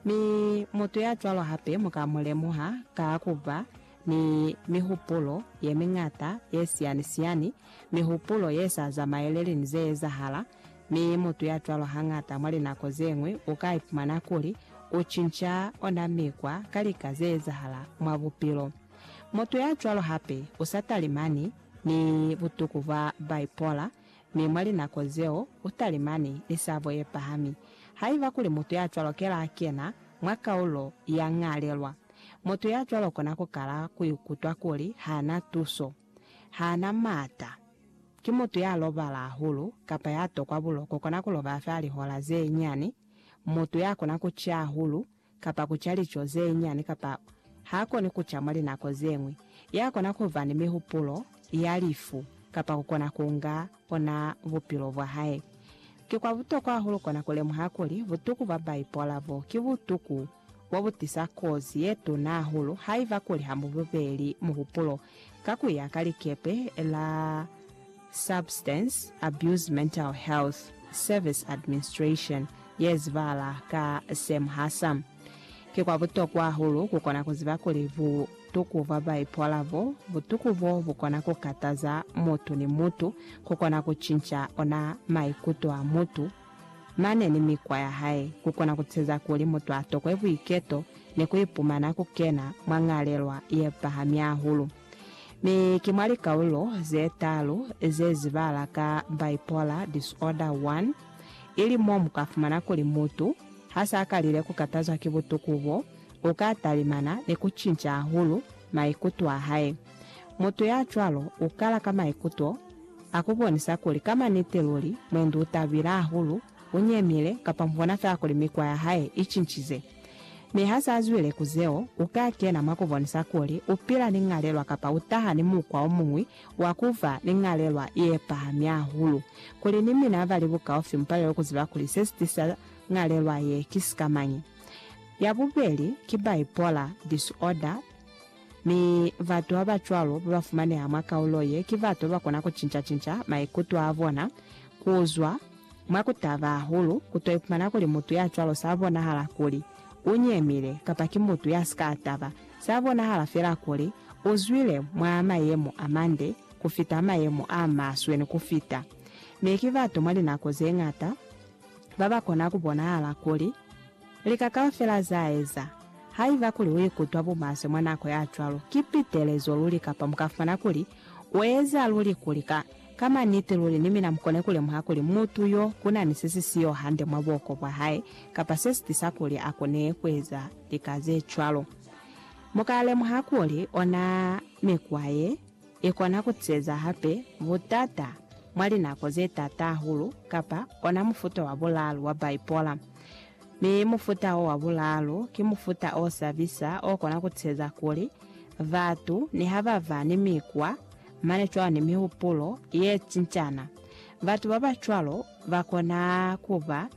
Mi mutu ya cwalo hape mu ka mu lemuha ka ku ba ni mihupulo ye miñata ye siyani-siyani, mihupulo ye sa zamaeleli ni ze ezahala. Mi mutu ya cwalo hañata mwa linako ze ñwi u ka ipumana kuli u cinca ona mikwa ka lika ze ezahala mwa bupilo. Mutu ya cwalo hape u sa talimani ni butuku bwa bipolar Mi mwa linako zeo, utalimani ni sabo yepahami. Haiba kuli mutu ya cwalo kela a kena mwa kaulo ya ñalelwa, mutu ya cwalo kona kukala kuikutwa kuli hana tuso, hana maata, ki mutu ya lobala hahulu, kapa ya tokwa buloko, kona kulobala fela lihola zeñani, mutu ya kona kuciya hahulu, kapa ku ca lico ze nyani kapa ha koni ku ca mwa linako ze ñwi, ya kona ku ba ni mihupulo ya lifu kapa ku kona ku nga ona bupilo bwa hae. Ki kwa butokwa hahulu kona ku lemuha kuli butuku bwa baipola bo ki butuku bo bu tisa kozi ye tuna hahulu haiba kuli ha mu bubeli muhupulo ka ku ya ka likepe la Substance Abuse Mental Health Service Administration, ye zibahala ka SAMHSA. Ki kwa butokwa hahulu ku kona ku ziba kuli butuku bwa bipolar bo, butuku bo bu kona ku kataza mutu ni mutu, ku kona ku cinca ona maikuto a mutu, mane ni mikwa ya hae, ku kona ku teza kuli mutu a tokwe buiketo ni ku ipumana ku kena mwa ñalelwa ye pahami hahulu. Mi ki mwa likaulo ze talu ze zibala ka Bipolar Disorder 1, ili mo mu ka fumana kuli mutu ha s'a kalile ku katazwa ki butuku bo, u ka talimana ni ku cinca hahulu maikuto a hae. Mutu ya cwalo u kala ka maikuto a ku bonisa kuli ka maniti luli mwendi u tabile hahulu U nyemile, kapa mu bona fela kuli mikwa ya hae i cincize. Mi ha s'a zwile ku zeo, u ka kena mwa ku bonisa kuli u pila ni ñalelwa kapa u taha ni mukwa o muñwi wa ku fa ni ñalelwa ye pahami hahulu. Kuli ni mina ba li bukaufi mu palelwe ku ziba kuli se si tisa ñalelwa ye ki sikamañi. Ya bubeli ki bipolar disorder, mi batu ba ba cwalo ba ba fumaneha mwa kaulo ye ki batu ba ba kona ku cinca-cinca maikuto a bona ku zwa Mwa ku taba hahulu, ku to ipumana kuli mutu ya cwalo sa bonahala kuli u nyemile kapa ki mutu ya si ka taba. Sa bonahala fela kuli u zwile mwa mayemo a mande ku fita, mayemo a maswe ni ku fita. Mi ki batu mwa linako ze ñata ba ba kona ku bonahala kuli lika kaufela za eza. Haiba kuli u ikutwa bumaswe mwa nako ya cwalo, ki pitelezo luli kapa mu ka fumana kuli u eza luli kuli ka Ka maniti luli, ni mina mukone ku lemuha kuli mutu yo kuna ni se si siyo hande mwa buoko bwa hae, kapa se si tisa kuli a kone kueza lika ze cwalo. Mu ka lemuha kuli ona mikwa ye, i kona ku tiseza hape butata mwa linako ze taata hahulu, kapa ona mufuta wa bulaalu wa bipolar. Mi mufuta wo wa bulaalu, ki mufuta o sabisa o kona ku tiseza kuli batu niha ba ba ni mikwa, Mane cwani mihupulo ye cincana. Batu ba ba cwalo ba kona ku ba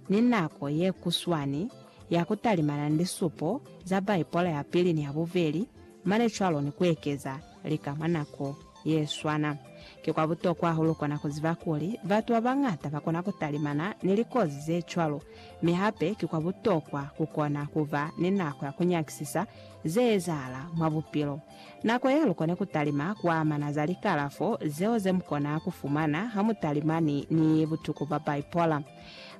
ni nako ye kuswani ya ku talimana ni lisupo za Baipola ya Pili ni ya Bubeli mane cwalo ni ku ekeza lika mwa nako ye swana. Ki kwa butokwa hahulu kona ku ziba kuli batu ba bañata ba kona ku talimana ni likozi ze cwalo, mi hape ki kwa butokwa ku kona ku ba ni nako ya ku nyakisisa ze ezahala mwa bupilo. Nako yalukoni kutalima kuamana za likalafo zeo zemukona kufumana hamutalimani ni butuku bwa bipolar.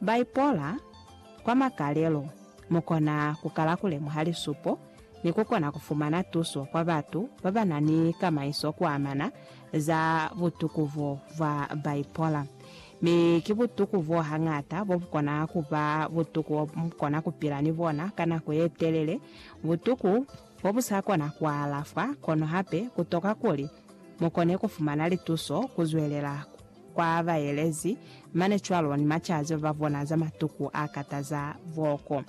Bipolar, kwa makalelo, mukona kukala kulemuha lisupo ni kukona kufumana tuso kwa batu babanani kamaiso kuamana za butuku bo bwa bipolar. Mi ki butuku bo hañata bobukona kuba butuku bomukona kupila ni bona ka nako yetelele, butuku fo bu sa kona ku alafwa, kono hape ku toka kuli mu kone ku fumana lituso ku zwelela kwa baelezi mane cwalo ni macazi ba bona za matuku a kataza boko.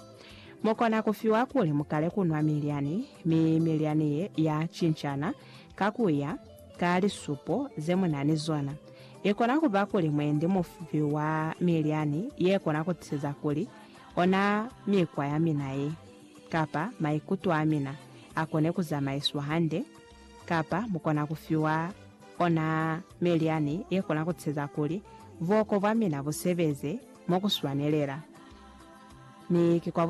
Mu kona ku fiwa kuli mu kale ku nwa milyani, mi milyani ye ya cincana ka ku ya ka lisupo ze mu na ni zona. I kona ku ba kuli mwendi mu fiwa milyani ye kona ku tiza kuli ona mikwa ya mina ye. kapa maikuto a mina a kone ku zamaiswa hande, kapa mu kona ku fiwa ona meliani ye kona ku tiseza kuli buoko bwa mina bu sebeze mo ku swanelela. Mi ki kwa